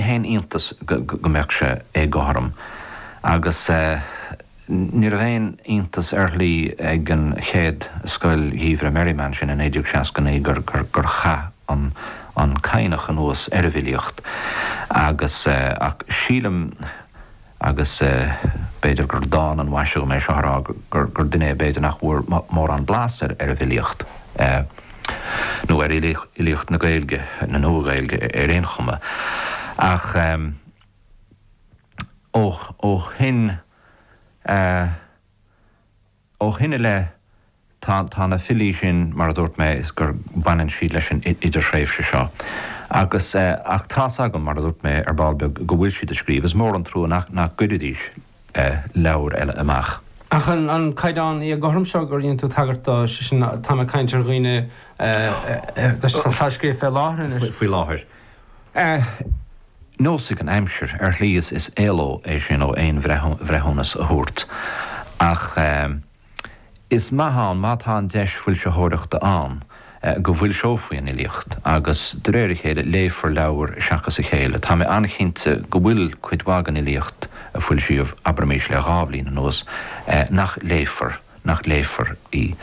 ní haon iontas go mbeadh sé éagothrom agus ní raibh aon iontas air ar shlí ag an chéad Scoil Gheimhridh Merriman sin i 1969 gur chaith an Cadhnach anuas ar an bhfilíocht ach sílim agus b'fhéidir gur dána an mhaise dhom é seo a rá, gur duine é b'fhéidir nach bhfuair mórán blas ar an bhfilíocht, nó ar fhilíocht na Gaeilge, na Nua-Ghaeilge ar aon chuma, ach ó shoin. Ó shoin i leith tá tá na filí sin mar a dúirt mé is gur baineann siad leis an idirthréimhse seo agus ach tá a fhios agam mar a dúirt mé ar ball beag go bhfuil siad ag scríobh. Is mór an trua nach nach gcuiridís leabhair eile amach. Ach an an caighdeán éagothrom seo gur dhein tú tagairt dó, sé sin tá mé ag caint ar dhaoine atá ag scríobh fé láthair anois. Faoi láthair. Á neosfaidh an aimsir ar shlí is éaló é sin ó aon bhreithiúnas a thabhairt. Ach is maith ann má tá an deis foilsitheoireachta ann go bhfoilseofaí an fhilíocht agus de réir a chéile léifear leabhair seachas a chéile. Tá mé an-chinnte go bhfuil cuid mhaith den fhilíocht a foilsíodh, abraimís le dhá bhliain anuas, nach léifear, nach léifear í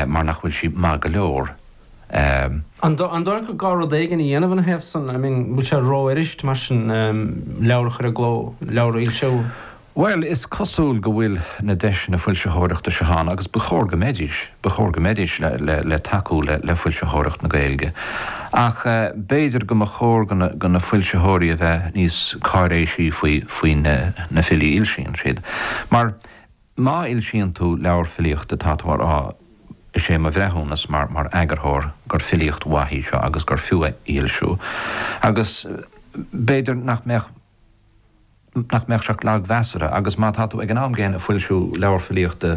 mar nach bhfuil sí maith go leor. Ehm. An dóigh leat gur gá rud éigin a dhéanamh ina thaobh san? I mean, bhfuil sé ró-fhuirist, mar sin, ehm, leabhar a chur i gcló, leabhar a fhoilsiú? Bhuel, is cosúil go bhfuil na deiseanna foilsitheoireachta seo ann agus ba chóir go mbeidís, ba chóir go mbeidís le, le, le tacú le, le foilsitheoireacht na Gaeilge. Ach eh, b'fhéidir go mba chóir do na, do na foilsitheoirí a bheith níos cáiréisí faoi, faoi na, na filí a fhoilsíonn siad. Mar. Má fhoilsíonn tú leabhar filíochta tá tú ag rá, Is é mo bhreithiúnas mar eagarthóir gur filíocht mhaith í seo agus gur fiú í a fhoilsiú. Agus b'fhéidir nach mbeadh nach mbeadh sé ach lagmheasartha agus má tá tú ag an am gcéanna ag foilsiú leabhar filíochta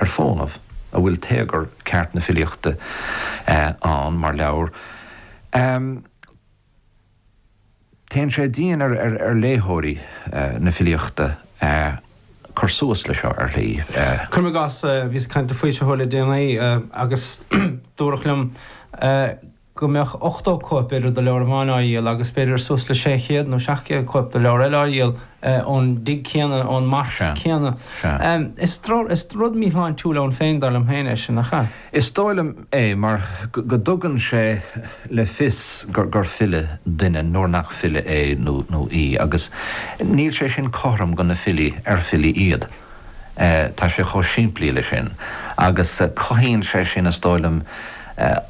ar fónamh a bhfuil téagar ceart na filíochta ann mar leabhar, Téann sé dian ar léitheoirí na filíochta cur suas le seo ar shlí. Cuirim i gcás, bhíos ag caint le foilsitheoir le déanaí agus dúradh liom go mbeadh 80 cóip, b'fhéidir, de leabhar amháin á dhíol agus b'fhéidir suas le 600 nó 700 cóip de leabhar eile á dhíol ón dtigh céanna, ón marc céanna. Is rud míshláintiúil ann féin, dar liom féin, é sin, nach ea? Is dóigh liom é mar go dtugann sé le fios gur file duine nuair nach file é nó í agus níl sé sin cothrom do na filí ar filí iad. Tá sé chomh simplí leis sin agus cothaíonn sé sin is dóigh liom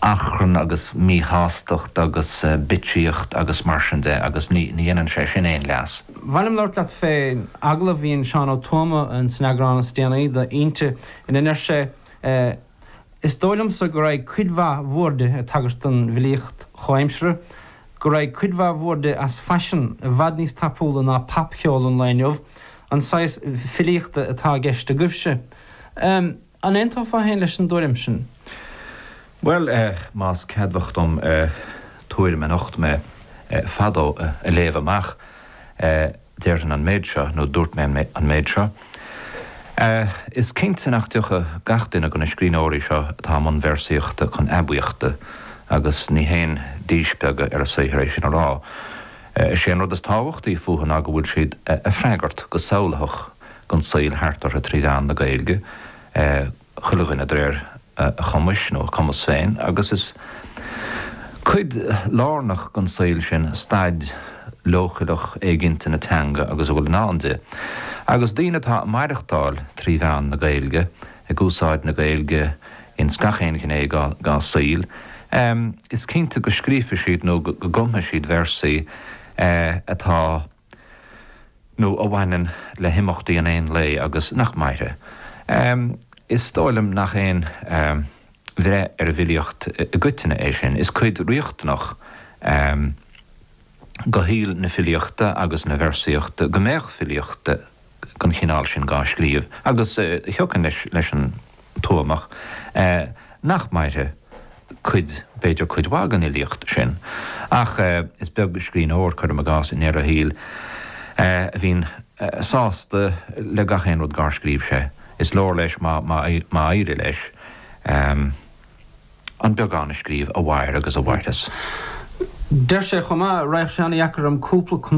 achrann agus míshástacht agus bitsíocht agus mar sin de agus ní dhéanann sé sin aon leas. Ba mhaith liom labhairt leat fé agallamh a dhein Seán Ó Tuama in san eagrán is déanaí de Innti ina ndeir sé. é. Is dóigh liom-sa go raibh cuid mhaith mhór de ag tagairt don bhfilíocht chomhaimseartha, go raibh cuid mhaith mhór de as faisean, i bhfad níos tapúla ná pop-cheol an lae inniu, an saghas filíochta atá i gceist agaibhse. An aontófá féin leis an dtuairim sin? Bhuel, más ceadmhach dom tuairim a nocht mé fadó a léamh amach. déarfainn an méid seo, nó dúirt mé an méid seo. Is cinnte nach dtiocfaidh gach duine de na scríbhneoirí seo atá i mbun véarsaíochta chun aibíochta, agus ní haon díspeagadh ar a saothar é sin a rá. Is é an rud is tábhachtaí fúthu ná go bhfuil siad ag freagairt go samhlaitheach don saol thart orthu trí mheán na Gaeilge, chuile dhuine de réir a chumais nó a cumas féin agus is cuid lárnach den saol sin staid leochaileach éiginnte na teanga agus a bhfuil i ndán di. Agus daoine atá ag maireachtáil trí mheán na Gaeilge, ag úsáid na Gaeilge ins gach aon ghné dá saoil, is cinnte go scríobhfaidh siad nó go gcumfaidh siad véarsaí atá. nó a bhaineann le himeachtaí an aon lae agus nach mairfidh. Is dóigh liom nach aon bhreith ar an bhfilíocht i gcoitinne é sin. Is cuid riachtanach de shaol na filíochta agus na véarsaíochta go mbeadh filíocht. den chineál sin dhá scríobh agus thiocfainn leis an Tuamach nach mairfidh cuid, b'fhéidir cuid mhaith den fhilíocht sin. Ach is beag scríbhneoir, cuirim i gcás, i ndeireadh a shaoil a bhíonn sásta le gach aon rud dhár scríobh sé. Is leor leis má éirigh leis an beagán a scríobh a mhair agus a mhairfeas. Deir sé chomh maith, 'Raghadh seana-dheacair orm cúpla.